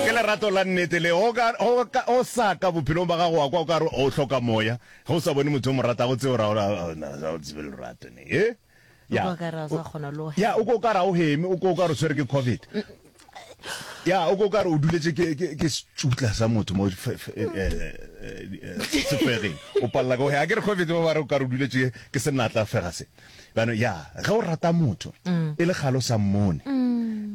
Ke lerato la nnete le. O ka, o ka, o sa ka bophelong ba gago wa kwa o ka re o hloka Moya, ge o sa bone motho o mo ratago, tseo ra, ra, ra, na, ra o tsebe lerato ne, he? O Ya. kwa o ka re ga o sa kgona le go Ya, o hema. kwa o ka re ga o heme, o kwa o ka re o tshwere ke Covid. Ya, o kwa o ka re o duletše ke, ke, ke setšutla sa motho mo fe, fe, eh, eh, eh, sefegeng. O palela ka go hema. Ga ke re Covid, ba ba re o ka re o duletše ke senatla fega se. Bano, ya, ge o rata motho, e le kgale o sa mmone, um,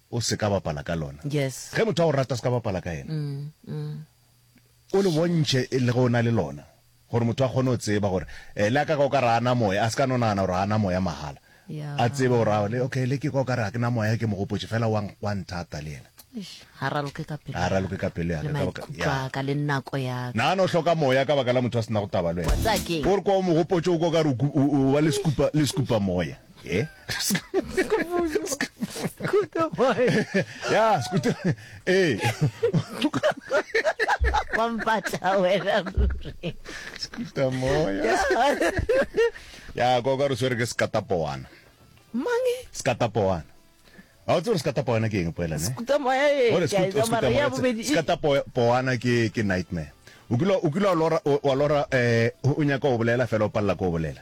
o se ka bapala ka lona. Yes. Ge motho a go rata, o se ka bapala ka yena. O le bontšhe e le ge o na le lona, gore motho a kgone go tseba gore le a ka ka o ka re a na moya, a se ka no nagana gore a na moya mahala. A tsebe gore a le okay, le ke ka o ka re ga ke na moya, ke mo gopotše fela wa wa nthata le yena. Ga a raloke ka pelo ya ka. Ga a raloke ka pelo ya ka. Le maikutlo a ka, le nako ya ka. Nagana o hloka moya ka baka la motho a se nago taba le wena. Wa tseba keng? Ke gore kwa o mo gopotše o ka o ka re o ba le sekupa, le sekupa moya. Eh? Scooter boy. ya scooter ee wa mpatla wena ruri scooter moya ya koka re swere ke sekatapowana mangi sekatapowana ga o tse gore sekatapowana ke eng poela ne skuta moya e Ore ke a e skuta- tsamaya, skuta ya moya, bobedi e- skata po- poana ke ke nightmare o kile o kile wa lora o- wa lora eh o nyaka o bolela fela o palela ko o bolela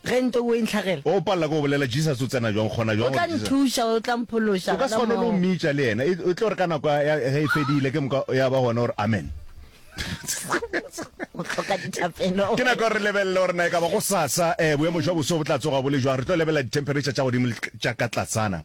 Ge ntwa o e ntlhagela. O palela ke go bolela, Jesus o tsena bjang gona bjang? O tla nthuša, o tla mphološa. O ka se kgone le go mmitša le yena. E tlo re ka nako ya ge e fedile, ke moka ya ba gona o re, Amen. O hloka dithapelo. Ke nako ya gore re lebelele gore na e ka ba go sasa boemo jwa boso bo tla tsoga bo le jwang. Re tlo lebelela dithempheretšha tša godimo le tša ka tlasana.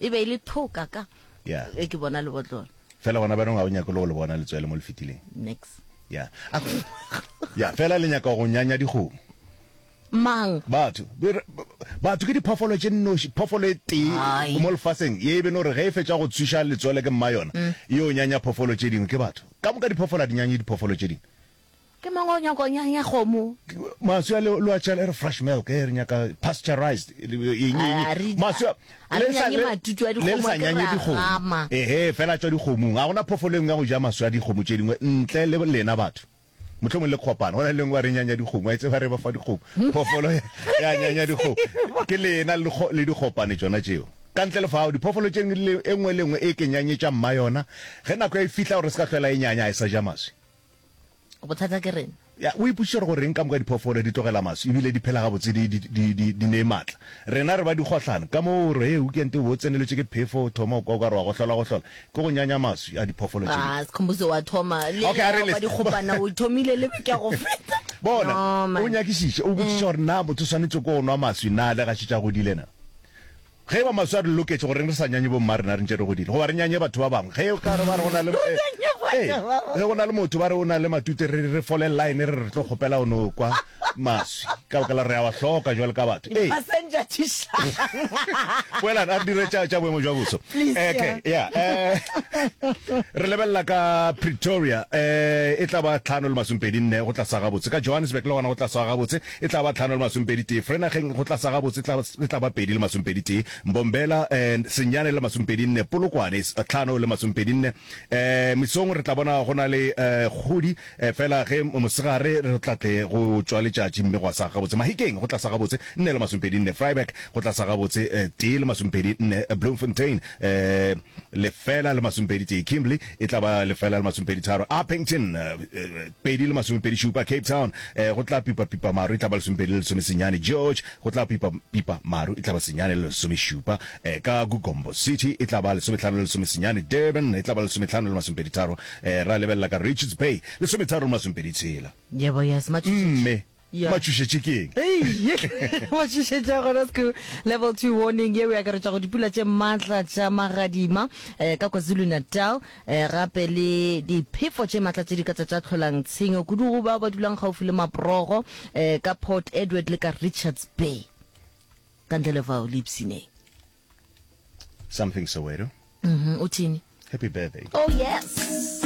E be e le thoka ka. Yeah. E ke bona lebotlolo. Fela gona banong ga o nyake go le bona letswele mo le fetileng. Nix. Yeah. Yeah, fela le nyaka go nyanya dikgomo. Mang? Batho. Batho ke diphoofolo tše nnoši, phoofolo e tee mo lefaseng ye e beno re ge e fetša go tswiša letswele ke mma yona, e o nyanya phoofolo tše dingwe ke batho. Ka moka diphoofolo a di nyanye diphoofolo tše dingwe. Ke mang o nyaka go nyanya kgomo? Maswi a le lo a tšela e re fresh milk e re nyaka pasteurized eng eng maswi a le sa le sa nyanye dikgomo ehe fela tswa dikgomong a gona phofolo engwe ya go ja maswi a dikgomo tše dingwe ntle le lena batho mohlomong le kopana gona lengwe re nyanya dikgomo a itse ba re ba fa dikgomo phofolo ya nyanya dikgomo ke lena le dikgopane tsona tšeo ka ntle le fao diphoofolo tše engwe le engwe e ke nyanyetša mma yona ge nako ya e fihla gore se ka tlhwela e nyanya a e sa ja maswi bothata ke rena ya o ipušitše gore goreng ka moka diphoofolo di tlogela maswi ebile di phela gabotse di, di, di, di, di ne matla rena re ba dikgohlano ka moo gore e ukente o bo o tseneletše ke phefo o thoma o kwa o ka re wa gohlola gohlola ke go nyanya maswi a diphoofolo tše ah sekhombuso wa thoma le Okay, a re le- ba dikgopana o thomile le ke go feta bona No, man. o nyakišiše o botšiša gore na motho o swanetše ko o nwa maswi na le gaše tša godile na Ge e ba maswi a re loketše, goreng re sa nyanye bomma rena re ntše re godile? Goba re nyanye batho ba bangwe? Ge e ka re ba re go na le, ee, ge go na le motho ba re o na le matute, re, re fole line re re re tlo kgopela o no kwa maswi, ka baka la gore re a wa hloka bjalo ka batho. Ee. Boelang a re dire tša, tša boemo bja boso. Eke, ya, ee. Re lebelela ka Pretoria, ee, e tla ba tlhano le masomepedi nne go tla sa gabotse. Ka Johannesburg le gona go tla swa gabotse. E tla ba tlhano le masomepedi tee, Vrenageng go tla sa gabotse tla, e tla ba pedi le masomepedi tee, Mbombela and senyane le masomepedi nne, Polokwane is tlhano le masomepedi nne. Eh, mesong re tla bona go na le eh, kgodi, eh, fela ge mosegare re tla tle go tšwa letšatši mme gwa sa gabotse. Mahikeng go tla sa gabotse nne le masomepedi nne, Vryburg go tla sa gabotse eh, tee le masomepedi nne, Bloemfontein eh, lefela le masomepedi tee, Kimberley e tla ba lefela le masomepedi tharo, Upington eh, Pedi le masomepedi šupa, Cape Town, eh, go tla pipa pipa maru e tla ba lesomepedi le lesome senyane, George, go tla pipa pipa maru e tla ba senyane le lesome šupa, eh, ka Gugombo City e tla ba lesometlhano le lesome senyane, Durban, e tla ba lesometlhano le masomepedi tharo, eh, ra lebelela ka Richards Bay, lesometharo le masomepedi tshela. Yebo, yes, Matšhitšhitši. Mme, Yeah. matšhošetše ke eng Ei, ye ba šišetša gona sco level 2 warning ye o akaretša go dipula tše maatla tša magadima um ka kwazulu-natal um gape le diphefo tše maatla tše di ka tsa tša tlholang tshenyo kudu go bao ba dulang gaufi le maprogo um ka port edward le ka richards bay ka ntle le fao le ipsineng something soweto Mhm, o thini happy birthday oh yes